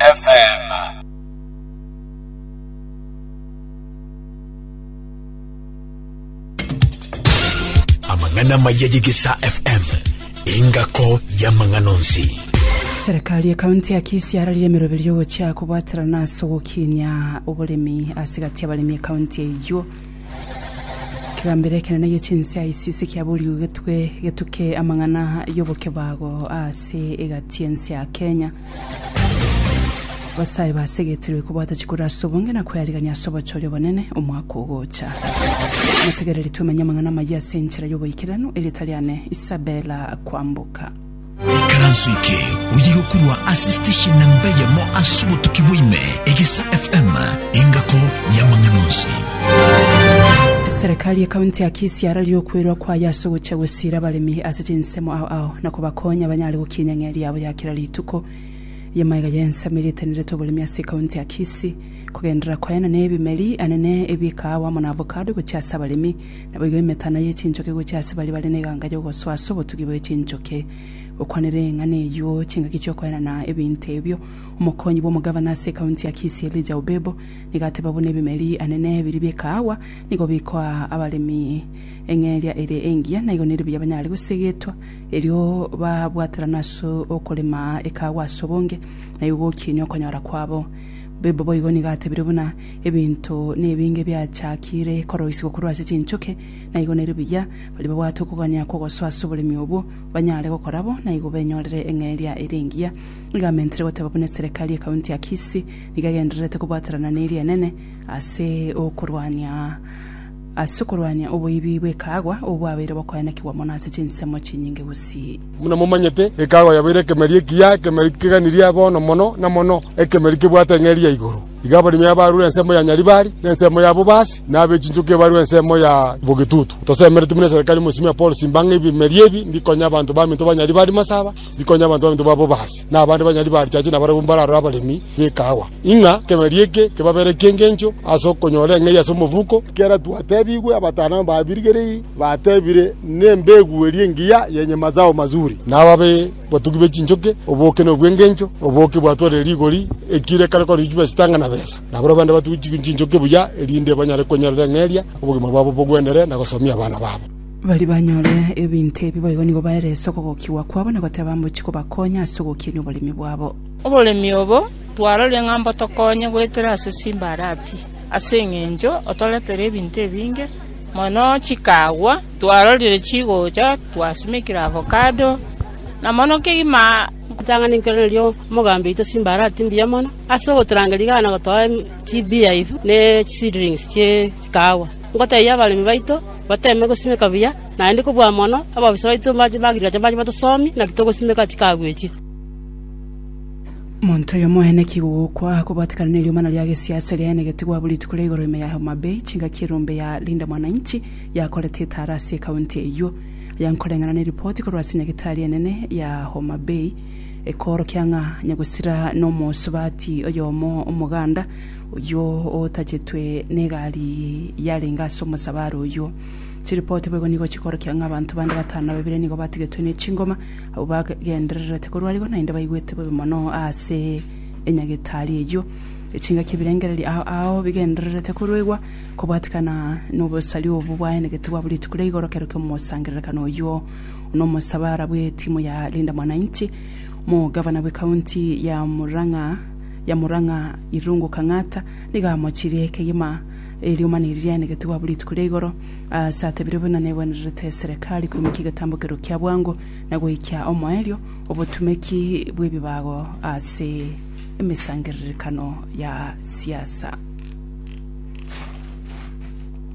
FM. Amang'ana amaya y'Egesaa FM, engako y'amang'ana onsi. Serikali ya kaunti ya Kisii yararire emeroberi y'ogochia kobwaterana ase ogokinia oboremi ase egati y'abaremi ekaunti eyio. Ekegambero ekenene gie chinsa ICC kiaborigwe getwe getuke amang'ana y'obokebago ase egati y'ense ya Kenya. Abasae basegetirwe kobwata chikoro ase obonge na kwearigania ase obochori obonene omwaka ogocha. Motegereri twemenye amang'ana amayia ase enchera y'oboikeranu erio tari ane Isabella kwamboka. ikaranso eke oye gokorwa ase station namba eyemo ase obotuki bwaime egisa fm engako yamang'ana onsi Eserekari y'ekaunti ya Kisii yararire okwerwa kwaye ase ogochia gosira abaremi ase chinsemo ao ao na kobakonya banyare gokinya eng'eria yabo ya Kera rituko y'amaega y'ensemo eria eteneretwe oboremi ase ekaunti ya Kisii kogenderera koena n'ebimeri anene ebikaago amo na avocado gochia ase abaremi naboigo emetana y'echinchoki gochia ase baria bare n'eganga y'ogosoa ase obotugi bw'echinchoki. Gokwanera eng'ana eyio chingaki chi'okoena na ebinto ebio, omokonyi bw'omogavana ase ekaunti ya Kisii Elijah Obebo nigo ateba buna ebimeri anene biria bikaagwa nigo bikoa abaremi eng'eria ere engiya naigo neribuya banyare gosegetwa Erio babwaterana ase okorema ekaagwa ase obonge, na igo gokiinia okonyora kwabo. Bibo boigo nigo atebire buna ebinto nebinge biachakire koroisigwa korwa ase chinchoke, na igo nerio buya baria babwate okogania kw'ogosoa ase oboremi obwo banyare gokora bo, na igo benyorere eng'eria ere engiya. Nigo amentire goteba buna eserekari ye kaunti ya Kisii nigo egendererete kobwaterana nerienene ase okorwania Ase okorwania oboibi bw'ekaagwa obo bwabeire bokoenekigwa mono ase chinsemo chinyinge gusii. Buna momanyete, ekaagwa yabeire ekemeri ekiya, ekemeri keganirie bono mono na mono, ekemeri kebwate eng'eria ya igoro. Igo abaremi abaarure ensemo ya nyaribari, na ensemo ya bobasi, na ab'echinchoki ebarure ensemo ya bogetutu. Tosemeretie buna eserekari mosimi ya Paul simba ng'a ebimeri ebi mbikonye abanto baminto ba nyaribari masaba, rikonya abanto baminto babe obaasi, na abande banyari barichache na barabwo mbararore abaremi b'ekaawa, ng'a ekeberio eke kebabere eki'engencho ase okonyora eng'eria ase omobuko. Ekero twatebigwe, abatano aba babirigereiri batebire, Nembegu eria engiya yenye mazao mazuri, na ababe batugi be chinchoke, oboke nobw'engencho, oboke bwatwarire rigori, ekire ekare koriinchwa chibesa chitang'ana besa, na barabwo bande batugi chinchoke buya, erinde banyare konyerera eng'eria, obogima bwabo bogwendere, na gosomia abana babo. Baria banyore ebinto ebi boigo nigo baerese okogokigwa kwabo na goteba mbochi kobakonya ase ogokinia oboremi bwabo. Oboremi obo twarorie ng'a mbotokonye goetera ase chimbarati, ase engencho otoretere ebinto ebinge mono chikagwa. Twarorire chigocha, twasimekire avocado, na mono kegima. Nkotang'ani nkoiranerie omogambi oito chimbarati mbuya mono ase ogotorangeria iga na gotoa chibeehive ne chiseedlings chie chikagwa. Ngotebia abaremi baito bateeme gosimeka buya, naende kobua mono ababisa baito b'agrigacha mbache batosomi, naki togosimeka chikagwechia. Monto oyo omoene ki gogokwa, kobatikana ne riomana ria gesiasi riaye ne getigwa bu rituko ria igoro ime ya Homa Bay, chingaki erombe ya Linda Mwananchi yakorete etara ase ekaunti eyio. Aya nkoreng'ana ne ripoti korwa ase nyagetari enene ya Homa Bay, ekoorokia ng'a Nyagusira nomosubati oyomo omoganda, Oyio otachetwe negari yarenge ase omosabare oyio. Chiripoti boigo nigo chikorokia ng'a abanto bande batano ababere nigo batigetwe ne chingoma, abwo bagendererete korwa arigo naende baigwete bobe mono ase enyagetari eyio. Echingaki ebirengererio ao ao bigendererete koruegwa kobwatikana nobosari obwo bwaenegete bwa buri rituko ria igoro kero kiomosangererekano oyio nomosabara bwe timu ya Linda Mwananchi, Omogavana bwe county ya Murang'a yamorora ng'a irungu kang'ata, nigo amochirie ekegima e riomani riria aenegetigwe abwo rituko ria igoro, aase atebire buna negwenererete eserekari koimokia egetambo kerwo kia bwango, na goikia omoerio obotumeki bw'ebibago ase emesangererekano ya siasa.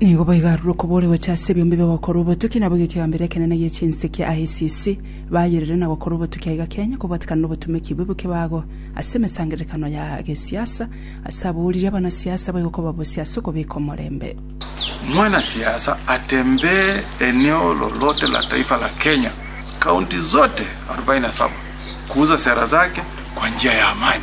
Nigo boigo arure okobori gocha ase ebiombe bi'ogokora obotuki, nabo egekiagambero ekenene gie chinsiki ICC, bayerere na gokora obotuki aiga kenya kobwatekana nobotumeki bwe bw'ekebago ase emesangererekano ya gesiasa ase aboririe abanasiasa boigo kobabosia ase okobeka omorembe. Mwanasiasa atembee eneo lolote la taifa la Kenya, kaunti zote arubaini na saba, kuuza sera zake kwa njia ya amani.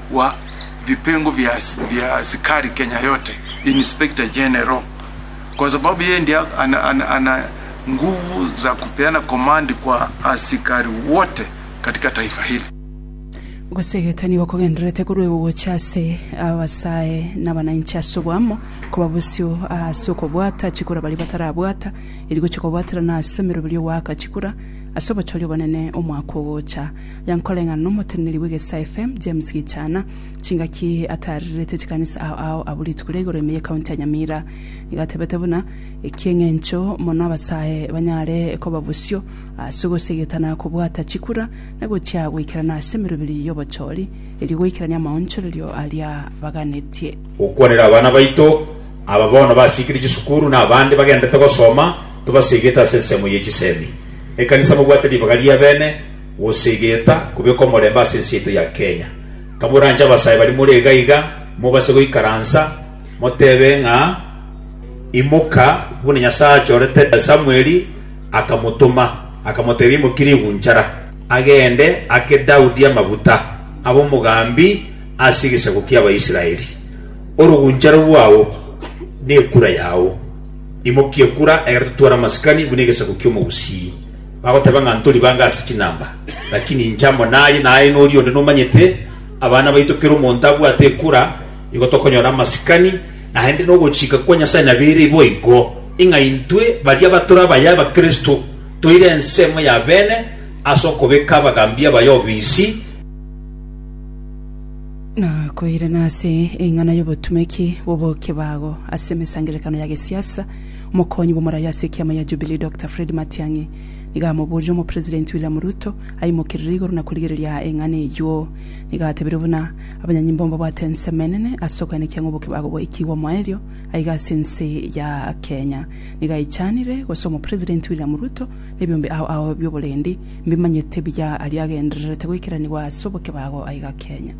wa vipengo via via asikari Kenya yote, Inspector General, kwa sababu yeye ndiye ana, ana, ana nguvu za kupeana komandi kwa asikari wote katika taifa hili. Gosegeta nigo kogendererete korwa igo gocha ase abasae n'abananchi ase oboamo, koba bosio ase okobwata chikura baria batarabwata, eri gochia kobwaterana ase emeroberio goaka chikura ase obochori obonene omwaka ogocha. Yankoreng'ana n'omoteneneri bw'egesa FM, James Gichana, chingaki ataarerete chikanisa ao ao abwo rituko ria igoro ime y'ekaunti ya Nyamira. Nigo atebete buna, Eki'eng'encho mono abasae banyare koba bosio ase ogosegeta na kobwata chikura na gochia goikerana ase emeroberi y'obochori, erio goikerania amaonchorerio aria baganetie. Gokwanera abana baito, aba bono basiikire chisukuru na abande bagenderete gosoma, tobasegete ase ensemo ye chisemi. Ekanisa mobwate ribaga riabene. Gose egeta kubeka omorembe ase ense yaito ya Kenya. Kamoranche abasae baria more iga iga, mobase goikaransa, motebe ng'a, Imoka, buna Nyasae achorete Samweli, akamotoma, akamotebia, Imokia rigunchara, agende, ake Daudi amaguta, abe omogambi ase egesaku ki'Abaisraeli. Oroguncharo rwao nekura yao. Imokia ekura, ekero totware amasikani buna egesaku ki'omogusii. Bagoteba ng'a ntori bange ase chinamba, lakini inche amo naye, na aye noria onde nomanyete, abana baito kera omonto abwate ekura, igo tokonyora amasikani, naende nogochika kwa Nyasae nabere boigo, ing'a intwe baria batore abaye Abakristo toire ensemo ya bene ase okobeka abagaambi abaye obisi, na koirana ase eng'ana y'obotumeki bw'obokebago ase emesangererekano ya gesiasa, Omokonyi bw'omoraia ase ekiama ya Jubilee Doctor Fred Matiang'i nigo amoborire Omopresidenti William Ruto aimokerere igoro na korigereria aa eng'ana eyio. Nigo atebirie buna abanyanyimbo mbabwate ensemo enene ase okoenekia ng'a oboke bagoikigwa moerio aiga ase ense ya Kenya. Nigo aichanire gose Omopresidenti William Ruto nebiombe ao ao bioborendi mbimanyete buya aria agendererete goikeranigwa ase oboke bago aiga Kenya.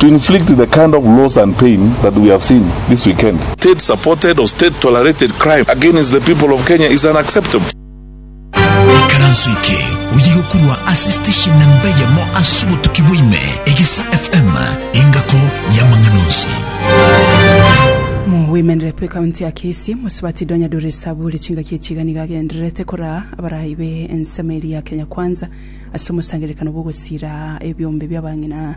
to inflict the kind of loss and pain that we have seen this weekend. State supported or state tolerated crime against the people of Kenya is unacceptable. Ekaranso eke oye gokurwa ase station namba eyemo ase obotuki bwa ime, Egesa FM, engako y'amang'ana onsi. Mogoimenere bwe county ya Kisii mosubati Donyadore Esaburi chingaki echi iga nigo agendererete koraa abaraai be ensemo eria ya Kenya Kwanza ase omosangererekano bw'ogosira ebiombe bi'abang'ina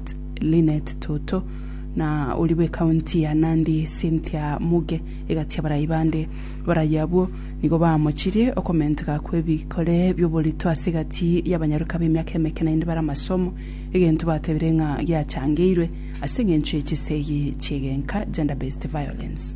St. Lynette Toto na oria bw'ecounty ya Nandi Cynthia Muge egachia abarai bande. Abarai abwo nigo baamochirie okomenteka kw'ebikore bi'oborito ase egati y'abanyaroka b'emiaka emeke naende bare amasomo, egento batebire ng'a giachangeirwe ase eng'encho ye chisegi chi'egenka, gender-based violence.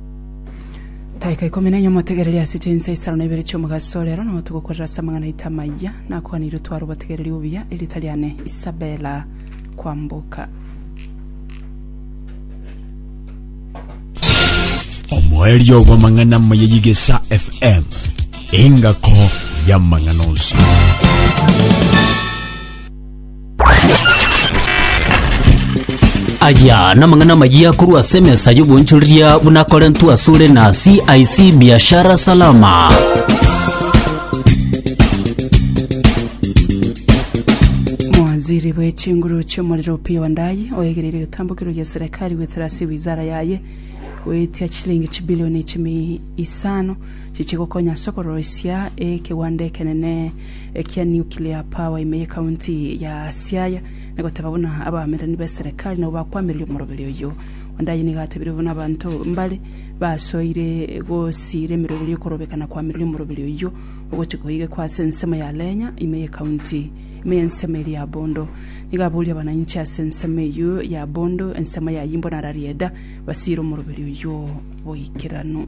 Taika ikomi na enye omotegereria ase chinsa isano na ibere chi'omogaso rero nao togokorera ase amang'ana aito amayia nakwanirwe tware obotegereri obuya erieta riane Isabella Kwamboka. omoerio bw'amang'ana amaya y'egesa fm engako y'amang'ana onsi Aya namang'ana amayia korwa ase emesa y'obonchoreria buna akorentwe asore na CIC Biashara Salama. Mawaziri bw'echinguru chi'omorero Opiyo Wandayi oegereire egetambokero gia serikali goetera ase wizara yaye goetia chilingi chibilioni chimi isano chichigokonya ase okoroisia ekegwanda ekenene ekia nuclear power ime ye county ya Siaya, na goteba buna abaamererani b'eserekari nabo bakwamiria omoroberi oyio. Wandayi nigo atebirie buna abanto mbare basoire gosiira emeroberi y'okorobeka na kwamiria omoroberi oyio ogochia koigekwa ase ensemo ya Lenya ime ye county ime y'ensemo eria ya Bondo. Nigo aboria abanainchi ase ensemo eyio ya Bondo ensemo yayio mbono ara rieda basiire omoroberi oyio boikeranu.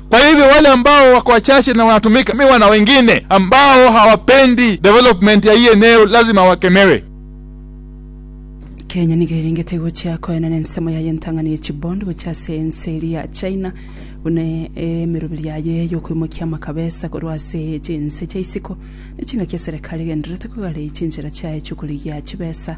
Kwa hivyo wale ambao wako wachache na wanatumiwa na wengine ambao hawapendi development ya hii eneo lazima wakemewe. Kenya nigo erengete gochia koenana ensemo yaye entang'ani ye chibondi gochia ase ense eria ya China buna emeroberi yaye y'okoimokia amakabesa korwa ase chinse chia isiko na chingaki eserekari egendererete kogara chinchera chiaye chi'okorigia chibesa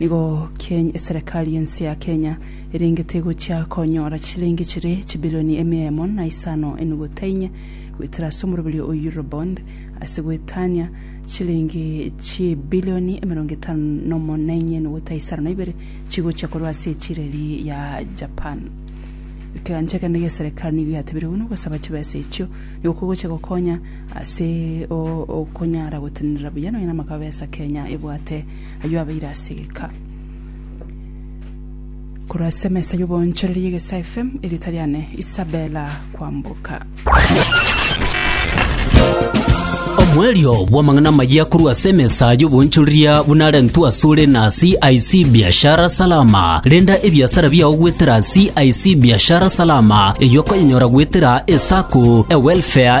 Nigo Keny eserekari y'ense ya Kenya erengete egochia konyora chisilingi chire chibilioni emia emo na isano enuguta inye goetera ase omoroberio o Eurobond ase goetania chisilingi chibilioni emerongo etano nomo na inye enuguta isano na ibere chigochia korwa ase echireri ya Japan. Ekegancha ekende gi'eserekari nigo giatebirie buna ogosaba chibesa echio nigo kogochia gokonya ase okonyara gotenenera buya nonya namakabesa Kenya ebwate Ayio abeire ase egeka korwa ase emesa y'oboonchoreria y'Egesae FM, erieta riane Isabella Kwamboka. Omwerio bw'amang'ana amayia korwa ase emesa y'oboonchoreria buna arentwe asore na CIC Biashara Salama. Renda ebiasara biao goetera CIC Biashara Salama, eyio okonyenyora goetera esako, ewelfare,